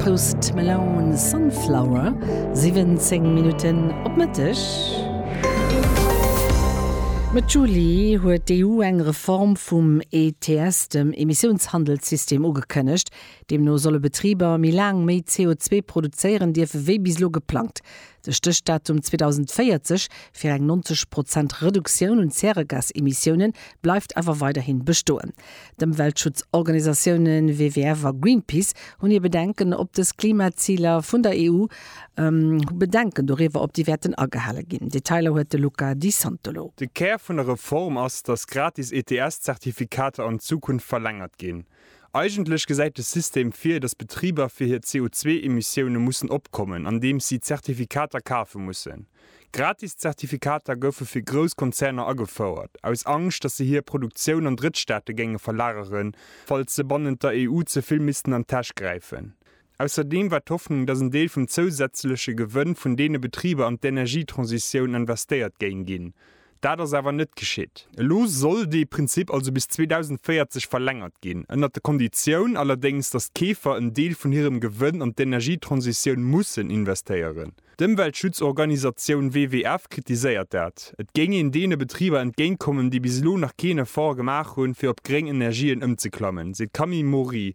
Post Malone Sunflower, 17 Minutten op Mëtteg. Mëtt Juli huet d'EU eng Reform vum ETS, dem Emissiounshandelssystem, ugekënnegt. Deemno solle Betriber méi laang méi CO2 produzéieren dierfen, wéi bis elo geplangt. De Stéchdatum 2040 fir eng 90 Prozent Reduktioun un Zäregasemissiounen bleift awer weiderhin bestoen. D'Ëmweltschutzorganisatiounen WWF a Greenpeace hunn hir Bedenken op dës Klimaziler vun der EU, hu Bedenken doriwwer op déi wäerten agehale ginn. Detailer huet de Luca Di Santolo. De Kär vun der Reform ass, datt gratis ETS-Zertifikater an Zukunft verlängert ginn. Eigentlech gesäit de System vir, datt Betriber fir hir CO2-Emissioune mussen opkommen, andeems si Zertifikater kafe mussen. Gratis Zertifikater goufe fir grouss Konzerner agefouert, aus Angscht, datt se hir Produktioun an Drëttstaate géinge verlageren, falls se bannent der EU ze vill missten an d'Täsch gräifen. Ausserdeem war d'Hoffnung, datt en Deel vum zousätzleche Gewënn vun deene Betriber an d'Energietransitioun investéiert géing ginn. Dat ass awer net geschitt. Elo soll dee Prinzip also bis 2040 verlängert ginn, ënnert der Konditioun allerdéngs, datt d'Keefer en Deel vun hirem Gewënn an d'Energietransitioun mussen investéieren. D'Ëmweltschutzorganisatioun WWF kritiséiert dat. Et géing een deene Betriber entgéint kommen, déi bis elo nach keen Effort gemaach hunn, fir op gréng Energien ëmzeklammen, seet d'Camille Maury,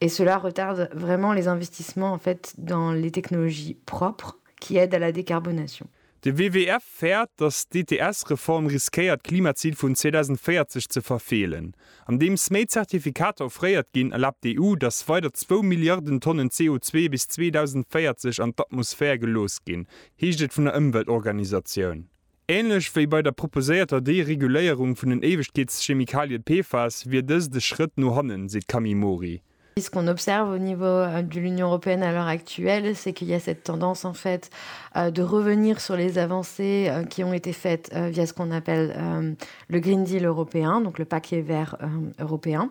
Et cela retarde vraiment les investissements en fait dans les technologies propres qui aident à la décarbonation. De WWF fäert, datt d'ETS-Reform riskéiert d'Klimazil vun 2040 ze verfeelen. Andeems méi Zertifikater offréiert ginn, erlaabt d'EU, datt weider zwou Milliarden Tonnen CO2 bis 2040 an d'Atmosphär gelooss ginn, heescht et vun der Ëmweltorganisatioun. Ähnlech wéi bei der proposéierter Dereguléierung vun den Éiwegkeetschemikalien PFAS wier dëst e Schrëtt no hannen, seet d'Camille Mori. Et ce qu'on observe au niveau de l'Union européenne à l'heure actuelle, c'est qu'il y a cette tendance en fait de revenir sur les avancées qui ont été faites via ce qu'on appelle le Green Deal européen, donc le paquet vert européen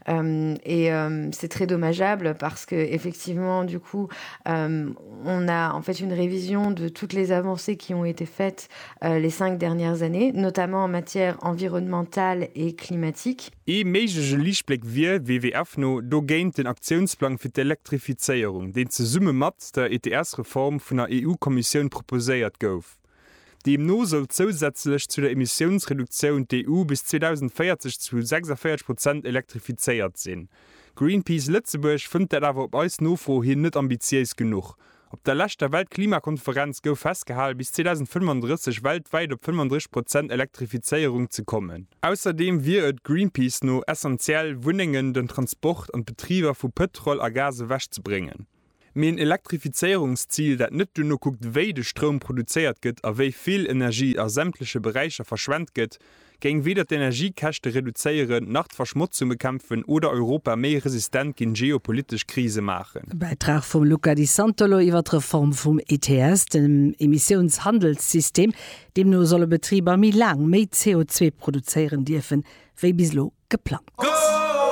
et c'est très dommageable parce que effectivement du coup on a en fait une révision de toutes les avancées qui ont été faites les cinq dernières années, notamment en matière environnementale et climatique. Ee méiglege Liichtbléck wier, WWF no, dogéint den Aktiounsplang fir d'Elektrifizéierung, deen zesumme mat der ETS-Reform vun der EU-Kommissioun proposéiert gouf. Deemno soll zousätzlech zu der Emissiounsreduktioun d'EU bis 2040 zu 46 Prozent elektrifizéiert sinn. Greenpeace Lëtzebuerg fënnt dat awer op eis Nofro hin net ambitiéis genuch. Op der leschter Weltklimakonferenz gouf festgehalen, bis 2035 weltwäit op 35 Prozent Elektrifizéierung ze kommen. Ausserdeem wier et Greenpeace no essentiell, Wunnengen, den Transport an d'Betriber vu Pëtrol a Gas ewech ze bréngen. Mee en Elektrifizéierungszil, dat net duerno kuckt, wéi de Stroum produzéiert gëtt a wéi vill Energie a sämtleche Beräicher verschwent gëtt, géing weder d'Energiekäschte reduzéieren, nach d'Verschmotzung bekämpfen oder Europa méi resistent géint geopolitesch Krise maachen. E Bäitrag vum Luca Di Santolo iwwer d'Reform vum ETS, dem Emissiounshandelssystem. Deemno solle Betriber méi laang méi CO2 produzéieren dierfen, wéi bis elo geplangt.